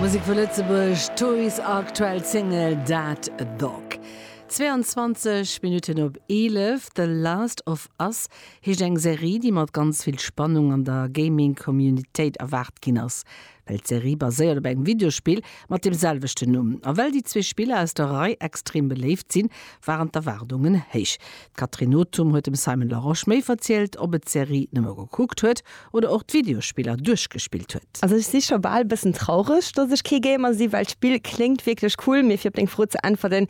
Musek vu Lëtzebuerg, Toys aktuell Single That Dog. 22 Minutten op 11, The Last of Us heescht eng Serie, déi mat ganz vill Spannung an der Gaming Communitéit erwaart ginn ass. Well d'Serie baséiert op engem Videospill mat dem selwechten Numm, a well déi zwee Spiller aus der Rei extrem beléift sinn, waren d'Erwaardungen héich. D'Catherine Nothum huet dem Simon Larosche méi verzielt, ob et d'Serie nëmme gekuckt huet oder och d'Videospiller duerchgespillt huet. Also ech si scho bal e bëssen traureg, dass ech kee Gamer si, well d'Spill kléngt wierklech cool. Mee fir op deng Fro ze äntwerten,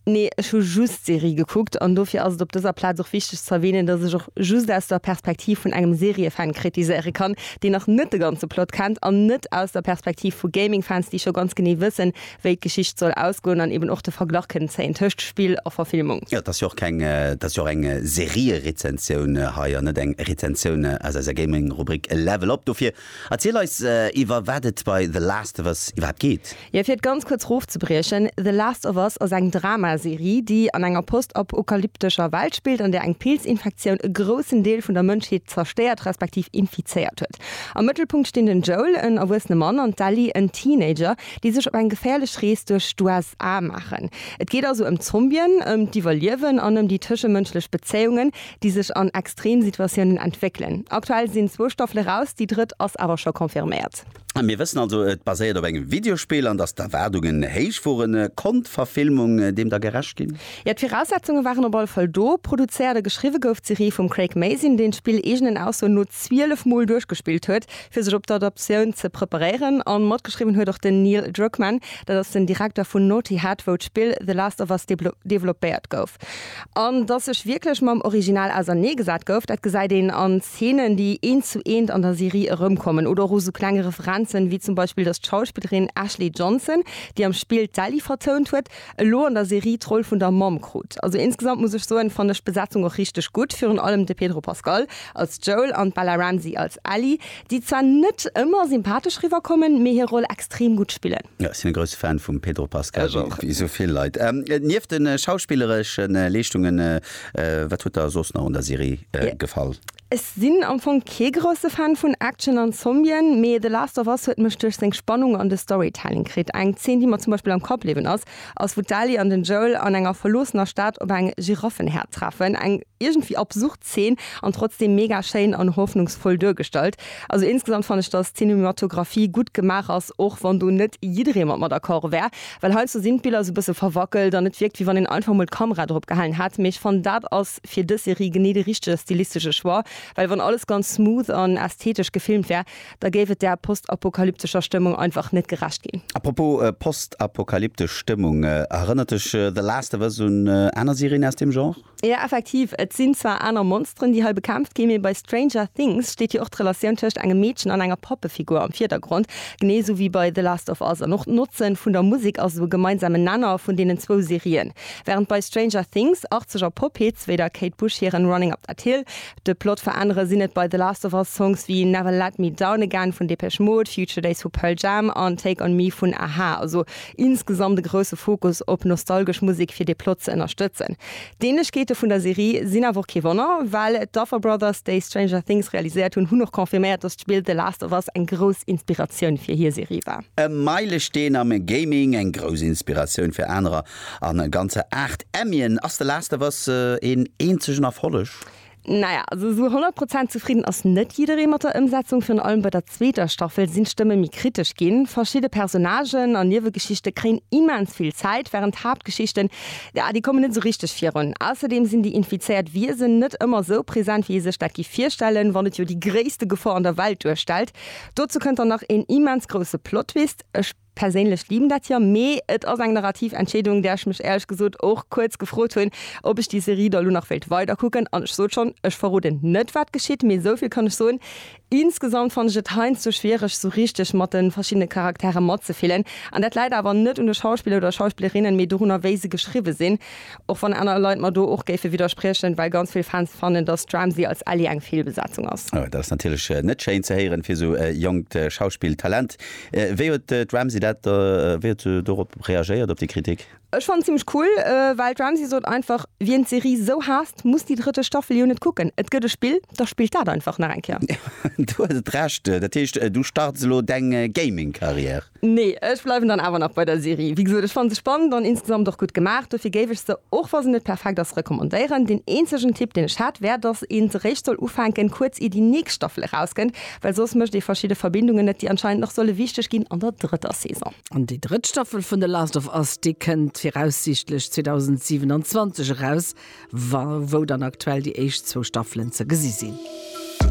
Nee, ech hu just d'Serie gekuckt. An dofir ass et op dëser Plaz och wichteg ze erwänen, dass ech och just aus der Perspektiv vun engem Seriefan kritiséiere kann, deen nach net de ganze Plot kennt, an net aus der Perspektiv vu Gamingfans, déi scho ganz genee wëssen, wéi d'Geschicht soll ausgoen an eben och de Verglach kënnen zéien tëscht Spill a Verfilmung. Jo, et ass jo och keng, et ass jo och eng Serierezensioun hei an net eng Rezensioun aus eiser Gaming-Rubrik Level Up. Dofir erziel eis, iwwer wat et bei The Last of Us iwwerhaapt geet. Jo, fir et ganz kuerz erofzebriechen, The Last of Us ass eng Drama-Serie, déi an enger postapokalyptescher Welt spillt, an där eng Pilzinfektioun e groussen Deel vun der Mënschheet zerstéiert, respektiv infizéiert huet. Am Mëttelpunkt stinn den Joel, en erwuessene Mann, an d'Ellie, en Teenager, déi sech op eng geféierlech Rees duerch d'USA maachen. Et geet also ëm Zombien, ëm d'Iwwerliewen an ëm déi tëschemënschlech Bezéiungen, déi sech an Extremsituatiounen entwéckelen. Aktuell sinn zwou Staffele raus, déi drëtt ass awer scho confirméiert. Mir wëssen also, et baséiert op engem Videospill an datt d'Erwaardungen héich woren. Konnt d'Verfilmung deem da gerecht ginn? Jo, d'Viraussetzunge waren op alle Fall do. Produzéiert a geschriwwe gouf d'Serie vum Craig Mazin, deen d'Spill eegenen Aussoen no 12 Mol duerchgespillt huet. fir sech op d'Adaptioun ze preparéieren a matgeschriwwen huet och den Neil Druckmann, dat ass den Direkter vun Naughty Head, wou d'Spill The Last of Us developpéiert gouf. An datt sech wierklech mam Original ausernee gesat gouf, dat gesäit een an Zeenen, déi eent zu eent an der Serie erëmkommen oder och u sou klenge Referenzen, wéi zum Beispill, datt d'Schauspillerin Ashley Johnson, déi am Spill d'Ellie vertount huet, elo an der Serie d'Roll vun der Mamm krut. Also insgesamt muss ech soen, fannen ech d'Besetzung och richteg gutt, virun allem de Pedro Pascal als Joel an d'Bella Ramsey als Ellie, déi zwar net ëmmer sympathesch riwwer kommen, mee hir Roll extrem gutt spillen. Jo, ech sinn e grousse Fan vum Pedro Pascal, wéi esou vill Leit. Nieft de schauspillereschen Leeschtungen, wat huet der soss nach un der Serie gefall? Ech sinn am Fong kee grousse Fan vun Action an Zombien, mee The Last of Us huet mech duerch seng Spannung an de Storytelling kritt. Eng Zeen, déi mer zum Beispill am Kapp bliwwen ass, ass wou d'Ellie an den Joel an enger verloossener Stad op eng Giraffenherd treffen. Eng iergendwéi absurd Zeen an trotzdeem mega schéin an hoffnungsvoll duergestallt. Also insgesamt fann ech, dass d'Cinematographie gutt gemaach ass, och wann do net jidderee mat mer d'accord wär, well heiansdo sinn d'Biller sou bësse verwackelt an et wierkt wéi wann een einfach mol d'Kamera drop gehalen hätt, mee ech fannen dat ass. ass fir dës Serie genee de richtege stilistesche Choix, well wann alles ganz smooth an ästhetesch gefilmt wär, da géif et der postapokalyptescher Stëmmung einfach net gerecht ginn. A propos postapokalyptesch Stëmmung, erënnert dech The Last of Us un aner Serien aus deem Genre? Jo, effektiv. Et sinn zwar aner Monsteren, déi hei bekämpft ginn, mee bei Stranger Things steet jo och d'Relatioun tëscht engem Meedchen an enger Pappefigur am Virdergrond, genee esou wéi bei The Last of Us. An och d'Notze vun der Musek ass esou e gemeinsamen Nenner vun deenen zwou Serien. Während bei Stranger Things arzeg a Pop Hits wéi der Kate Bush hiren Running Up That Hill de Plot veränneren, sinn et bei The Last of Us Songs wéi Never Let Me Down Again vun Depeche Mode, Future Days vu Pearl Jam an Take On Me vun a-ha. Also insgesamt e grousse Fokus op nostalgesch Musek fir de Plot ze ënnerstëtzen. D'Ähnlechkeete vun der Serie sinn awer och kee Wonner, well d'Duffer Brothers, déi Stranger Things realiséiert hunn, hunn och confirméiert, dass d'Spill The Last of Us eng grouss Inspiratioun fir hir Serie war. E Meilesteen am Gaming, eng grouss Inspiratioun fir anerer an e ganzer 8 Emmien. Ass The Last of Us een eenzegen Erfolleg? Naja, also esou 100 Prozent zefridden ass net jidderee mat der Ëmsetzung. Virun allem bei der zweeter Staffel sinn d'Stëmme méi kritesch ginn. Verschidde Personnagen an Niewegeschichte kréien immens vill Zäit, wärend d'Haaptgeschichten, ja, déi kommen net esou richteg virun. Ausserdeem sinn déi infizéiert Wiesen net ëmmer esou present, wéi ee sech dat géif virstellen, wann et jo déi gréisste Gefor an der Welt duerstellt. Dozou kënnt dann nach een immens grousse Plottwist. Ech perséinlech liben dat jo, mee et ass eng narrativ Entscheedung, där ech mech éierlech gesot och kuerz gefrot hunn, ob ech déi Serie da lo nach wéilt weiderkucken. An ech sot schonn, ech verroden net wat geschitt, mee esou vill kann ech soen, insgesamt fannen ech et heiansdo schwiereg esou richteg mat de verschiddene Charakteren matzefillen. An dat läit awer net un de Schauspiller oder Schauspillerinnen, mee dorunner wéi se geschriwwe sinn. Och wann aner Leit mer do och géife widderspriechen, well ganz vill Fans fannen, datt d'Ramsey als Ellie eng Feelbesetzung ass. Oh, dat ass natierlech net schéin ze héieren fir esou e jonkt Schauspilltalent. Wéi huet d'Ramsey dat, wéi huet se dorop reagéiert, op déi Kritik? Ech fannen et zimlech cool, well d'Ramsey sot einfach, Wien d'Serie esou haasst, muss déi drëtte Staffel jo net kucken. Et gëtt e Spill, da spillt dat einfach nach eng Kéier. Du hues et Recht. Dat heescht, du starts elo deng Gaming-Karriär? Nee, ech bleiwen dann awer nach bei der Serie. Wéi gesot, ech fanne se spannend an insgesamt och gutt gemaach. Dofir géif ech se, och wa se net perfekt ass, recommandéieren. Deen eenzegen Tipp, deen ech hätt, wär, dass een se réischt soll ufänken, kuerz ier déi nächst Staffel erauskënnt, well soss mécht ee verschidde Verbindungen net, déi anscheinend nach solle wichteg ginn an der drëtter Saison. An déi drëtt Staffel vun The Last of Us, déi kënnt viraussiichtlech 2027 eraus, wa wou dann aktuell déi éischt zwou Staffelen ze gesi sinn.